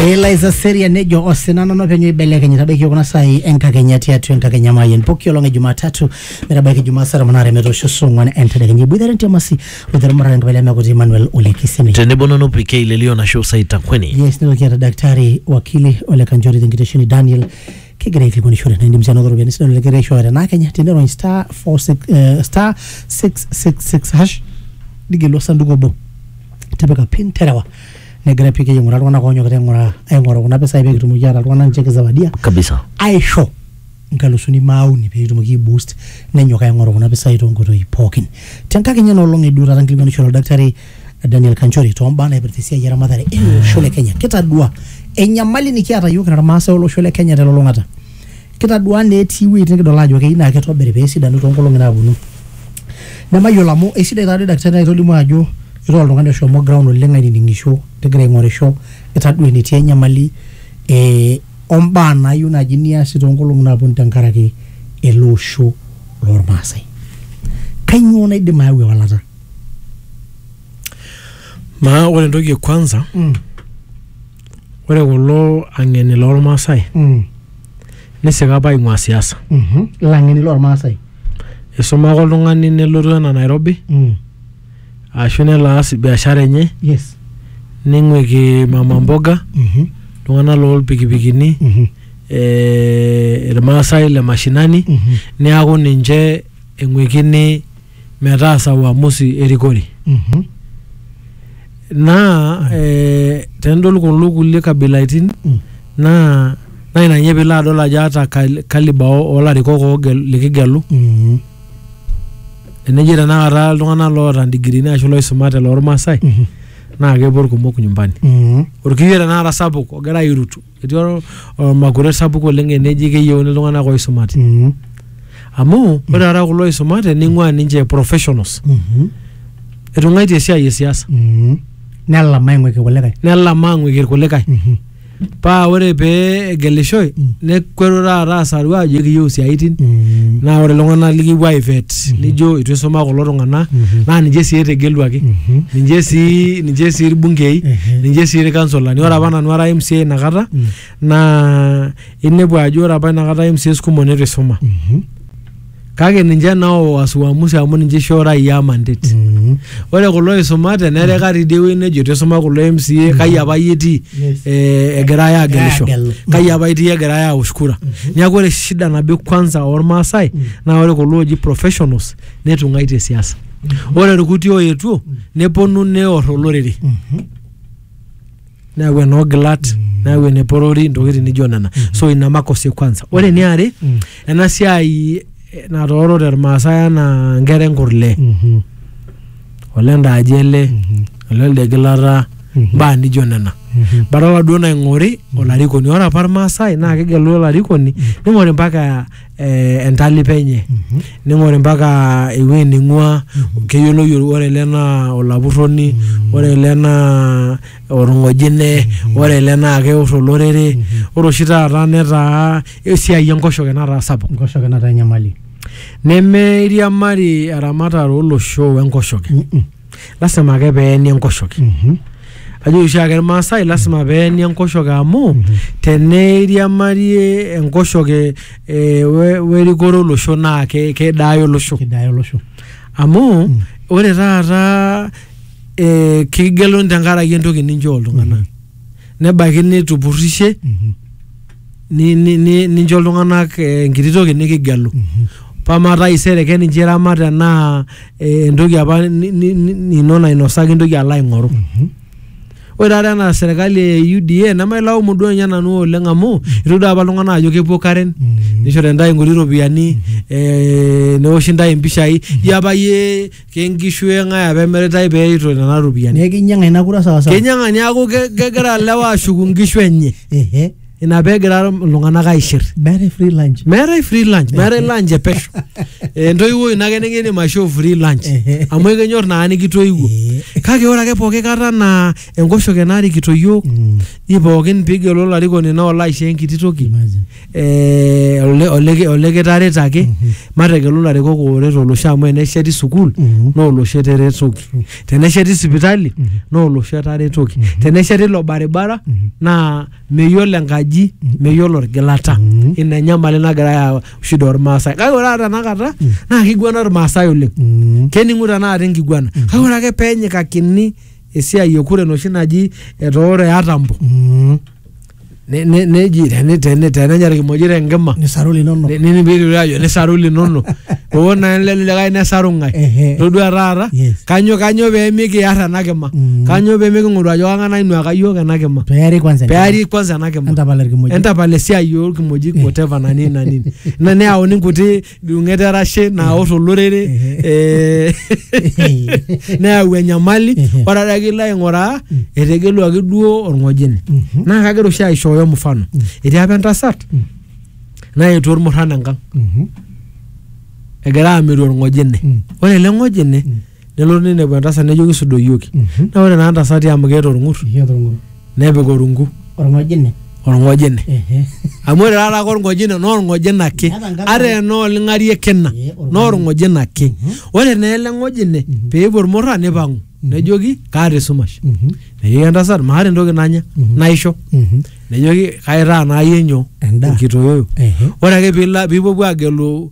Eliza Seria nejo osina nono penyo ibelekeny tabaiki kuna sai enkakenya tiatu enkakenya mayen poki olong e Jumatatu metabaiki Jumaa saa tomon aare metoosho saa ong'wan entedekenya iboitare ntiamasi oitaramatare enkabila emekuti Emmanuel Ole Kisemi. tenebo nanu PK Lelio Nasho Saitakweni. Yes, nitoki aata daktari wakili Ole Kanchori tenkitesheni Daniel kegira aikilikuanishore na indim sii anoto ropiyiani sidan oleng aishooyo tenaa Kenya tenirony star 46 eh, star 666 hash nigelu osanduku obo tipika pin terewa negira piki aing'uraa iltung'anak oonyokita aing'uraa aing'oru kuna pisai pee kitumoki aata iltung'anak ninche kizawadia kabisa aisho nkalusuni maauni pee kitumoki aiboost nenyok aing'oru kuna pisai toonkoitoi pookin tenkakenya ena olong eduo taata nkilikuanishore oldakitari Daniel Kanchori toombaa naipirta esiai eramatare ele osho le Kenya kitadua enyamali nikiata yiok kira irmaasai olosho le Kenya telulung'ata Kitadua naa etii iwuejitin nikidol ajo keyieu naa kitobiri pee esidanu too nkolong'i naaponu. Nemayiolo amu eisidai taadoi daktari naitolimu ajo itaa oltung'ani oshomo ground oleng ainining'isho tigira aing'orisho itadua enetii enyamali ee o mbaa naayieu naaji niasi too nkolong'i naaponu tenkaraki ele osho lormaasai. Kanyoo naidim ayau ewalata? Maa ore entoki e kwanza, ore kulo ang'eni lormaasai Nisika apa aing'ua siasa. Mhm. Ilang'eni lormaasai. Isuma ake oltung'ani nelotu ena Nairobi Mm. ashu nelo aas biashara enye Yes. ning'uiki mama mboga Mhm. iltung'anak loolpikipikini Mhm. eh, irmaasai le mashinani Mhm. neaku ninche eng'uikini metaasa uamusi erikore Mhm. naa eh, tenidol kulo kulie kabilaitin Mm. naa naa ina ninye piilo adol ajo ata kal- kaliba o- olarikok oogel- likigelu Mhm. eneji tenakata iltung'anak loota ndigirini ashu loisumate loormaasai Mhm. naa kepuo irkumok nyumbani Mhm. orkiyio tenakata sapuk ogira airutu etii ol- olmakure sapuk oleng eneji keyieuni iltung'anak oisumate Mhm. amu ore taata kulo oisumate ning'ua ninche professionals Mhm. etung'aitie esiai e siasa Mhm. nelam aing'uiki kulikae nelam aang'uiki irkulikae Mhm. paa ore pee egelishoi Mm. nekuetu taata asaru aajo ekiyieu isiaitin Mhm. naa ore iltung'anak likipuo aivet Yes. nijo itu isuma kulo tung'anak Mhm. naa ninche sii etegeluaki Mhm. ninche sii ninche sii irbungei Ehe. ninche sii irkansolani ore apa nanu ara MCA inakata Mm. naa inepu ajo ore apa inakata MCAs kumok neitu isuma Mhm. kake ninche nao wasuamusi amu ninche ishoo raia mandate Mhm. ore kulo oisumate nereka tidie wueji nejo itu isuma kulo MCA kai apa iyie itii Yes. eh, egirai aagelisho Aagelu. kai apa itii egirai aosh kura neeku ore shida nabo kwanza ormaasai naa ore kulo ooji professionals netung'aitie siasa ore irkuti oetuo neponu neor olorere Mhm. neyau enoogilat mm. neyau eneporori ntokitin nijo nena mm. so ina makosa kwanza ore mm. niare mm. ena siai eh, natoorote irmaasai anaa nkera enkurle mm -hmm. olendaaji ele mm -hmm. olelde gilata mm -hmm. mbaa nijo nena mm -hmm. badala duo naing'ori mm -hmm. olarikoni ore apa irmaasai naa kegelu olarikoni mm -hmm. ning'ori mpaka eh, entalipa enye ning'ori mpaka ewueji ning'ua keyioloi ol- ore ele naa olapurroni ore ele naa orng'ojine ore ele naa keor olorere ore oshi taata netaa esiai enkoshoke nataa sapuk nkoshoke nataa enyamali nemeiriamari eramatare olosho wenkoshoke Mm-mm. lasima ake peeni enkoshoke Mhm. ajo oshiake irmaasai lasima peeni enkoshoke amu teneiriamarie enkoshoke eh, we- werikore olosho naa ke- kedaayo olosho Kidaya olosho. amu Mm. ore taata eh, kigeluni tenkaraki entoki ninchoo iltung'anak nebaiki nitupurrishe ni- ni- ni- nincho iltung'anak eh, enkiti toki nikigelu pamaa taisere keninche iramat enaa eh, entoki apa ni- ni- ni- nino nainosaki intoki alo aing'oru ore taata ena serkali e UDA nemailaumu duo ninye nanu oleng amu itu doi apa iltung'anak ajo kepuo Karen nishori ntae nkuti ropiyiani eh, neoshi ntae impishai jio apa yie kenkishu eng'ae apa emiritae pee eito nena ropiyiani neeku kinyang'a ina kura sawasawa kenyang'a niaku ke- kegira lewa ashuku nkishu enye ehe ina peegira iltung'anak aishir meetae free lunch meetae free lunch meetae lunch e pesho Eh, entoiwuoi ino ake nikindim aishoo free lunch Ehe. amu ekenyor naa nikitoiwuo Eh. kake ore ake pooki kata naa enkoshoke narikito yiok Mm. i pookin pigelu olarikoni naa olo aisho enkiti toki Imagine. eh, ole- oleki- olekitaret ake mategelu larikok ooret olosho amu enesheti sukuul Mhm. naa olosho eteretoki tenesheti sipitali naa olosho etaretoki tenesheti ilo baribara naa meyiolo enkaji meyiolo orgilata Mhm. ina enyamali nagira ayau shida ormaasai kake ore taata tenakata naa kiguana ormaasai oleng Mm. kening'u tenakata enkiguana kake ore ake peenyikakini esiai ekure enoshi naji etooro eatambo Mm. Ne- ne- neji teni- teni- tenenya irkimojik tenkima nisaru linono Ne- nini piitoki ajo nisaru linono oo naa lele likae nesaru ng'ae Ehe. todua taata Yes. kanyo kanyo pee mikiar ena kima Mm. kanyo pee miking'oru ajo kang'ae nainuaka iyiook ena kima peari kwanza peari kwanza ena kima entapala irkimojik entapala esiai orkimojik whatever na nini na nini na neyauni nkuti midung'et erashe naor olorere eh, neyau enyamali Mhm. ore adake ilo aing'uraa etegeluaki duo orng'ojine Mhm. naa kagira oshi aishooyo mfano etii apa entasat Mm. naetuo ormurran enkang Mhm. egira amiru orng'ojine Mm. ore ele ng'ojine Mm. nelotu ninepu entasat nejoki sudoyioki Mhm. naa ore naa ntasati amu keeta orng'ur Ekiata orng'ur. nepik orungu Orng'ojine. orng'ojine Ehe. amu ore taata ake orng'ojine naa orng'ojine ake Eeta enkata- ata enaa oling'arie kina Ee, orng'ojine. naa orng'ojine ake ore naa ele ng'ojine peepuo irmurra nipang'u nejoki kaata esumash Mhm. nejoki entasat maata entoki nanya Mhm. naisho Mhm. nejoki kaitaa naa yie nyoo Endaa. enkitoyoyo Ehe. ore ake piila piipuopuo agelu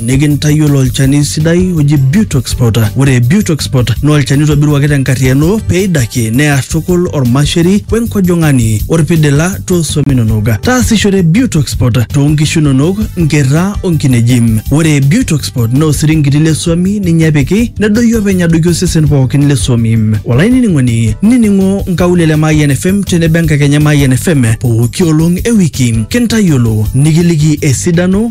nikintayiolo olchani sidai oji Butoxpot. Ore Butoxpot naa olchani oitobiruaki tenkarriyiano pee eidakie near tukul ormasheri we nkojong'ani orpidila too swam inonok. Taasishore Butoxpot too nkishu inonok, nkerra o nkineji. Ore Butoxpot naa osiringiti le swami ninye epiki nedoyio openy adoiki osesen pookin le swami. Olainining'oni nining'o nkaulele e Mayian FM tenebo enkakenya e Mayian FM pooki olong e wiki kintayiolo nikiliki esidano